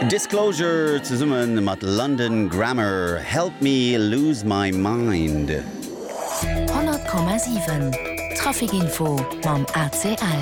Disclosure zesumme mat London Grammar, Help Me Lose My Mind. 100,7 Trafic Info mam ACL.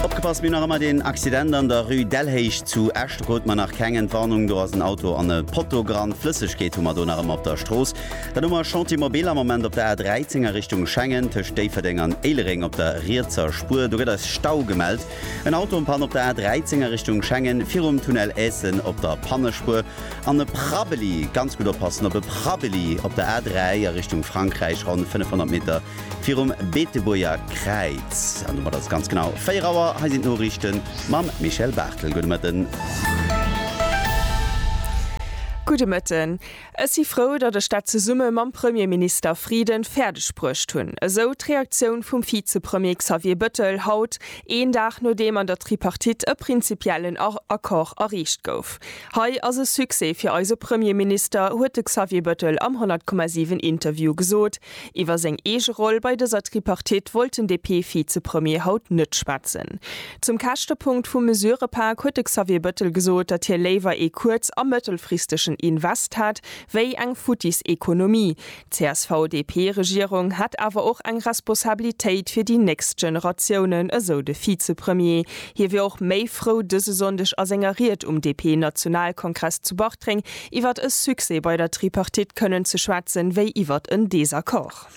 Opgepasst, mir nach ëmmer deen Accident an der Rue Delhéich zu Esch. Do krute mer nach keng Entwarnung, do ass en Auto an e Potto gerannt. Flëssegkeet hu mer do nach ëmmer op der Strooss. Dann hu mer e Chantier mobil am Moment op der A 13 a Richtung Schengen, tëscht Déifferdeng an Éilereng op der rietser Spuer. Do gëtt eis Stau gemellt. En Auto en Panne op der A 13 a Richtung Schengen, virum Tunnel Eessen op der Pannespuer. An e Prabbeli, ganz gutt oppassen op e Prabbeli op der A 3 a Richtung Frankräich, ronn 500 Meter virum Beetebuerger Kräiz. An domat ass et ganz genau 4 Auer. Hei sinn d'Noriichten mam Michel Barthel. Gudde Mëtten. Gudde Mëtten. Ech si frou, datt ech dat zesumme mam Premierminister Frieden fäerdeg bruecht hunn, esou d'Reaktioun vum Vizepremier Xavier Bettel haut, een Dag nodeem an der Tripartite e prinzipiellen Accord erreecht gouf. Hei ass e Succès fir eise Premierminister, huet de Xavier Bettel am 100,7 Interview gesot. Iwwer seng eege Roll bei dëser Tripartite wollt den DP-Vizepremier haut net schwätzen. Zum Käschtepunkt vum Mesurëpak huet de Xavier Bëttel gesot, datt hie léiwer ee kuerz a mëttelfristegen Invest hätt, wéi eng futtis Ekonomie. D'CSV-DP-Regierung hätt awer och eng Responsabilitéit fir déi nächst Generatiounen, esou de Vizepremier. Hie wier och méi frou dëse Sonndeg a senger Ried um DP-Nationalkongress zu Bartreng, Iwwert e Succès bei der Tripartite kënnen ze schwätzen, wéi iwwert en Desaccord.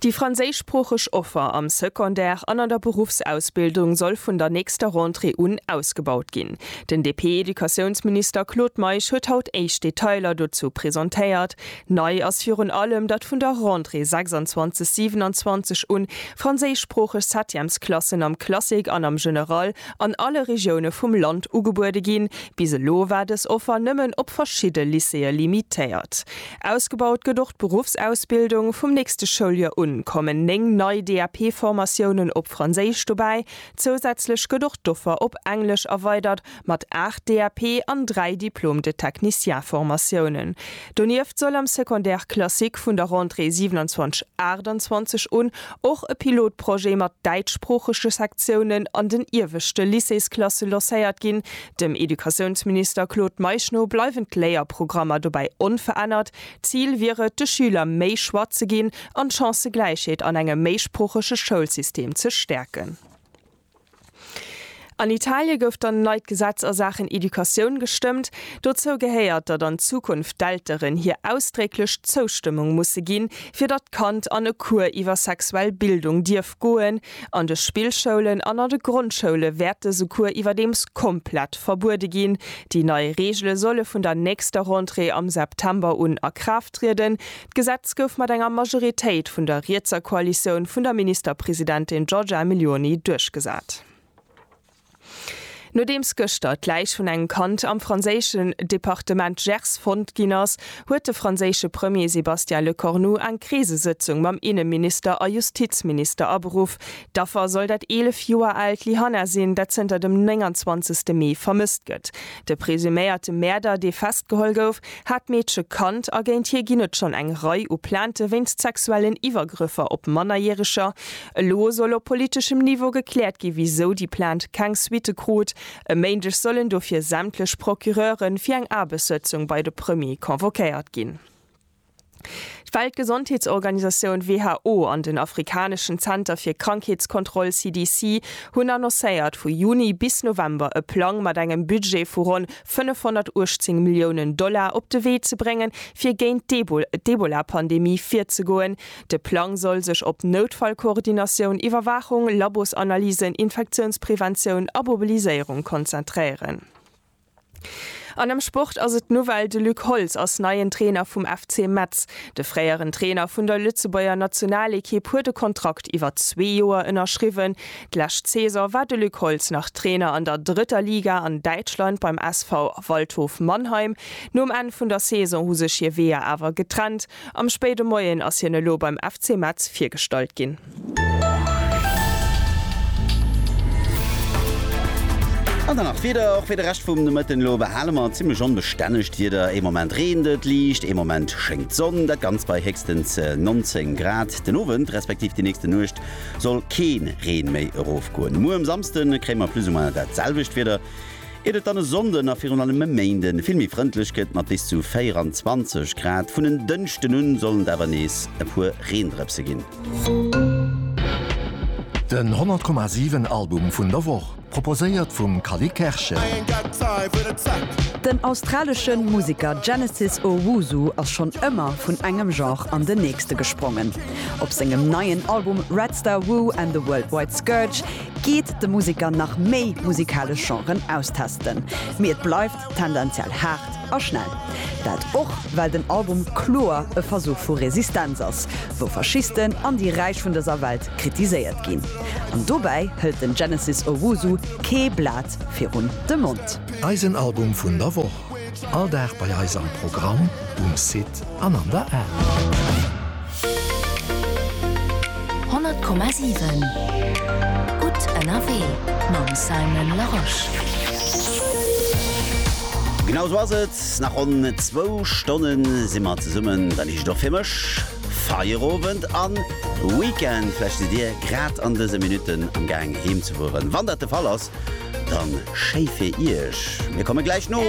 Déi franséischsproocheg Offer am Secondaire an an der Beruffsausbildung soll vun der nächster Rentrée un ausgebaut ginn. Den DP-Educatiounsminister Claude Meisch huet haut éischt Detailer dozou presentéiert. Nei ass virun allem, datt vun der Rentrée 26, 27 un franséischsproocheg Septièmesklassen am Classique an am General an alle Regioune vum Land ugebuede ginn. Bis elo war dës Offer nëmmen op verschidde Lycéeë limitéiert. Ausgebaut gëtt och d'Beruffsausbildung. Vum nächste Schouljoer un kommen 9 nei DAP-Formatiounen op Franséisch dobäi. Zousätzlech gëtt och d'Offer op Englesch erweidert. mat 8 DAP an 3 Diplôme de technicien Formatiounen. Donieft soll am Secondaire classique vun der Rentrée 27 28 un och e Pilotprojet mat däitschsproochege Sektiounen an den ieweschte Lycéesklasse locéiert ginn. Dem Educatiounsminister Claude Meisch no bleiwen d'Léierprogrammer dobäi onverännert. D'Zil wier et, de Schüler méi Choix ze ginn an d'Chancëgläichheet an engem méisproochege Schoulsystem ze stäerken. An Italie gouf dann neit Gesetz a Saachen Educatioun gestëmmt. Dozou gehéiert, datt an Zukunft d'Elteren hir ausdrécklech Zoustëmmung musse ginn, fir datt d'Kand an e Cours iwwer sexuell Bildung dierf goen. An de Spillschoulen an an de Grondschoule wäert dëse Cours iwwerdeems komplett verbuede ginn. Déi nei Reegele solle vun der nächster Rentrée am September un a Kraaft trieden. D'Gesetz gouf mat enger Majoritéit vun der rietser Koalitioun vun der Ministerpresidentin Giorgia Meloni duerchgesat. Nodeems gëschter d'Läich vun engem Kand am franséischen Departement Gers fonnt ginn ass, huet de franséische Premier Sébastien Lecornu eng Krisesëtzung mam Inneminister a Justizminister aberuff. D'Affer soll dat 11 Joer aalt Lyhanna sinn, dat zënter dem 29 Mee vermësst gëtt. De presuméierte Mäerder, dee festgeholl gouf, hat d'Meedche kannt a géint hie ginn et schonn eng Rei u Plainte wéinst sexuellen Iwwergrëffer op Mannerjäreger. Elo soll op politeschem Niveau gekläert ginn, wisou déi Plainte keng Suitte krut. E Méindeg sollen dofir sämtlech Procureure fir eng Aarbechtssëtzung bei de Premier convoquéiert ginn. D'Weltgesondheetsorganisatioun who an den afrikaneschen Zenter fir Krankheetskontroll CDC hunn annoncéiert, vu Juni bis November e Plang mat engem Budget vu ronn 518 Milliounen Dollar op de Wee ze bréngen, fir géint d'Ebola-Pandemie virzegoen. De Plang soll sech op Noutfallkoordinatioun, Iwwerwaachung, Labosanalysen, Infektiounspreventioun a Mobiliséierung konzentréieren. An am Sport ass et d'Nouvelle, de Luc Holtz ass neien Trainer vum FC Metz. De fréieren Trainer vun der Lëtzebuerger Nationalekipp huet e Kontrakt iwwer zwee Joer ënnerschriwwen. D'lescht Saison war de Luc Holtz nach Trainer an der drëtter Liga an Däitschland beim SV Waldhof Mannheim. Nom Enn vun der Saison hu sech hir Weeër awer getrennt. Am spéide Moien ass hien elo beim FC Metz virgestallt ginn. An dann nach d'Wieder, och fir de Rescht vum Nomëtten. Elo behale mer zimmlech onbestännegt Wieder, ee Moment reent et liicht, ee Moment schéngt d'Sonn, dat Ganzt bei héchstens 19 Grad. Den Owend respektiv déi nächste Nuecht soll kee Reen méi erofgoen. Muer um Samsde kréie mer plus ou moins dat selwecht Wieder. Iert et dann e Sonnden a virun allem e Méinden vill méi frëndlech gëtt mat bis zu 24 Grad, vun en Dënschden un sollen et awer nees e puer Reendrëpse ginn. Den 100 Komma 7 Album vun der Woch, proposéiert vum Cally Kerschen. Den australesche Museker Genesis Owusu ass schonn ëmmer vun engem Genre an den nächste gesprongen. Op sengem neien Album Red Star Woo and the Worldwide Scourge geet de Museker nach méi musikalesch Genren austesten, mee et bleift tendenziell haart a schnell. Dat och well den Album kloer e Versuch vu Resistenz ass, wou Faschisten an déi Räich vun dëser Welt kritiséiert ginn. An dobäi hëlt den Genesis Owusu kee Blat virun de Mond. Eisen Album vun der Woch. All Dag bei eis am Programm, um Site an an der App. 100,7 Gutt ënnerwee mam Simon Larosche. Genau sou ass et, nach ronn zwou Stonnen si mer zesummen, dann heescht et och fir mech. Feierowend an Weekend. Vläicht sidd dir grad an dëse Minutten am Gaang heem ze fueren. Wann dat de Fall ass, dann schéi fir iech. Mir kommen gläich no.